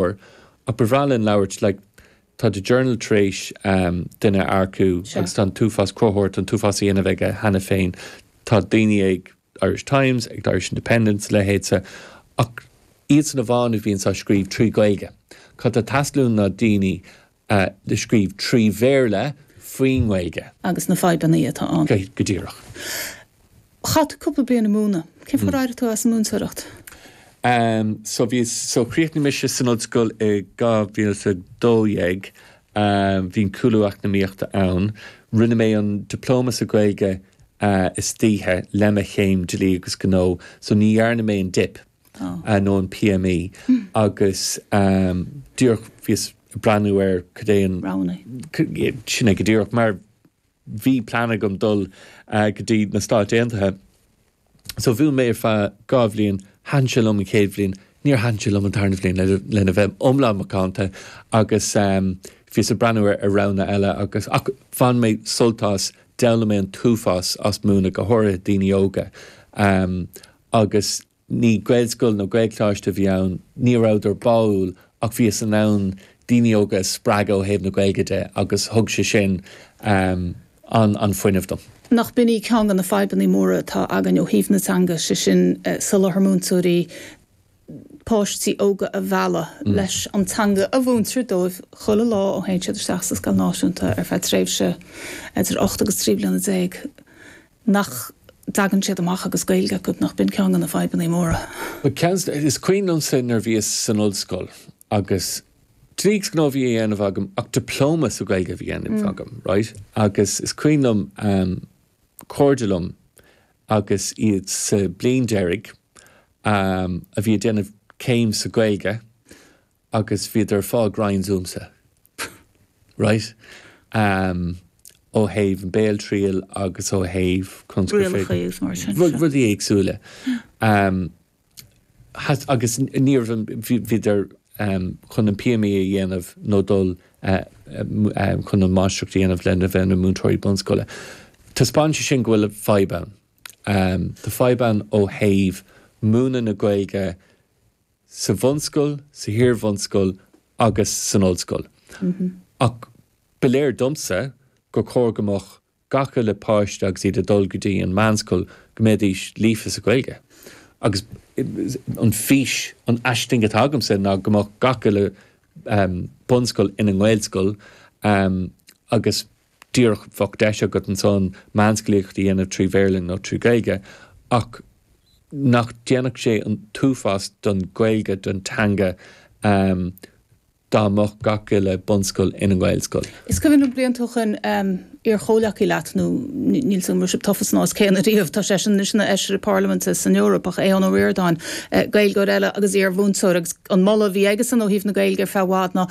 leor ach ba bhreá linn labhairt like tá the journal tar éis ehm duine a earcú Sure. agus tá an t-uafás cruthaitheoir tá an t-uafás á dhéanamh aige cheana féin tá daoine ag Irish Times ag the Irish Independent a leithéidí ach iadsan amháin a bhíonn ag scríobh trí Gaeilge cad atá ag teastáil uainn ná daoine le scríobh trí Bhéarla faoin nGaeilge. agus na fadhbanna atá ann. Go díreach. Chaith tú cúpla bliain ag múineadh. Cén fáth ar éirigh tú as an múinteoireacht? So bhí, so chríochnaigh mise san ollscoil i 2012, bhí an cúlú eacnamaíochta ann, rinne mé an Diploma sa Ghaeilge istoíche le mo chéim Dlí agus Gnó, so ní dhearna mé an dip. nó an PME agus díreach bhíos ag breathnú ar cad é an. Roghnaigh. Sin é go díreach mar bhí plean agam dul go dtí na Stáit Aontaithe so mhúin mé ar feadh dhá bhliain, thaitin sé liom an chéad bhliain, níor thaitin sé liom an tarna bhliain lena bheith iomlán macánta agus bhíos ag breathnú ar roghanna eile agus, ach bhain mé sult as, d'fhoghlaim mé an t-uafás as múineadh go háirithe daoine óga agus ní Gaelscoil nó Gaelcholáiste a bhí ann, ní rabhadar báúil ach bhíos in ann daoine óga a spreagadh ó thaobh na Gaeilge de agus thug sé sin an fuinneamh dom. Nach b'in í ceann de na fadhbanna móra atá againn ó thaobh na teanga, sé sin soláthar múinteoirí, páistí óga a mhealladh leis an teanga a mhúintear dóibh chuile lá ó théann siad isteach sa scoil náisiúnta ar feadh tréimhse idir ocht agus trí bliana déag. nach dtagann siad amach agus Gaeilge acu, nach b'in ceann de na fadhbanna móra. Is cuimhin liomsa nuair a bhíos san ollscoil agus dlí agus gnó a bhí á dhéanamh agam ach diploma sa Ghaeilge a bhí á dhéanamh agam, right, agus is cuimhin liom cairde liom agus iad sa bhliain deiridh a bhí ag déanamh céim sa Ghaeilge, agus bhíodar ag fáil grinds uaimse right um ó thaobh an béaltriail agus ó thaobh cúrsaí scríofa rudaí éagsúla um has agus níorbh an bhíodar um chun an PME a dhéanamh nó dul um chun an máistreacht a dhéanamh lena bheith ina múinteoirí bunscoile. Taispeánann sé sin go bhfuil fadhb ann um tá fadhb ann ó thaobh múineadh na Gaeilge, sa bhunscoil, san iar-bhunscoil agus san ollscoil. Ach ba léir domsa gur chóir go mbeadh gach uile páiste agus iad ag dul go dtí an mheánscoil go mbeidís líofa sa Ghaeilge. Agus an fhís, an aisling atá agamsa ná go mbeadh gach uile bunscoil ina nGaelscoil agus. díreach bheadh deis agat ansan meánscolaíocht a dhéanamh trí Bhéarla nó trí Ghaeilge ach nach déanfadh sé an t-uafás don Ghaeilge, don teanga, dá mbeadh gach uile bunscoil ina nGaelscoil? Is cuimhin liom blianta ó shoin iar-chomhleacaí leat, nó níl a fhios agam an raibh sibh tofa san am céanna riamh, tá seisean anois ina Fheisire Parlaiminte san Eoraip, ach Aodhán Ó Ríordáin, Gaeilgeoir eile agus iar-mhúinteoir agus an moladh a bhí aigesean ó thaobh na Gaeilge ar feadh i bhfad ná,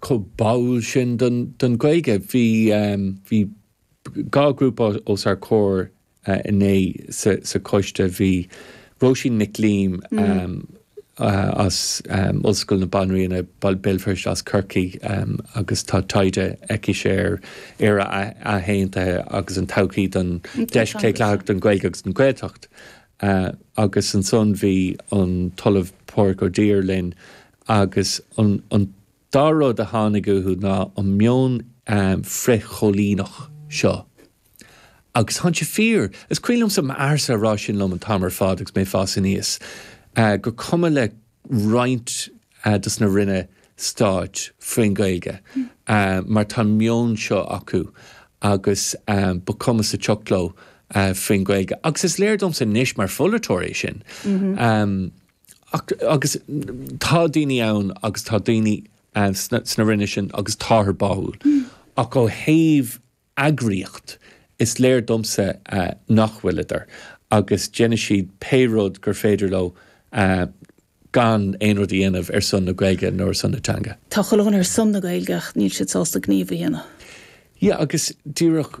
chomh báúil sin don Ghaeilge. Bhí dhá ghrúpa os ár gcomhair inné sa choiste. Bhí Róisín Nic Liam as Ollscoil na Banríona, Béal Feirste, as Corcaigh agus tá taighde aicise ar Éire athaontaithe agus an todhchaí don deis claochlaitheach don Ghaeilge agus don Ghaeltacht. Agus ansan bhí an tOllamh Pádraig Ó Duibhir linn Agus an dá rud a tháinig uathu ná an meon frith-choilíneach seo. Agus tá sé fíor. Is cuimhin liomsa m'athairse ag rá sin liom an t-am ar fad agus mé ag fás aníos, gur cuma le roinnt dos na Ranna Stáit faoin Ghaeilge mar tá an meon seo acu agus ba chuma sa sioc leo faoin Ghaeilge. Agus is léir domsa anois mar pholaiteoir é sin. Ach, agus tá daoine ann agus tá daoine sna Ranna sin agus táthar báúil, ach ó thaobh eagraíocht, is léir domsa nach bhfuileadar agus déanfaidh siad pé rud gur féidir leo gan aon rud a dhéanamh ar son na Gaeilge nó ar son na teanga. Tá chuile dhuine ar son na Gaeilge ach níl siad sásta gníomh a dhéanamh. Yeah, agus díreach.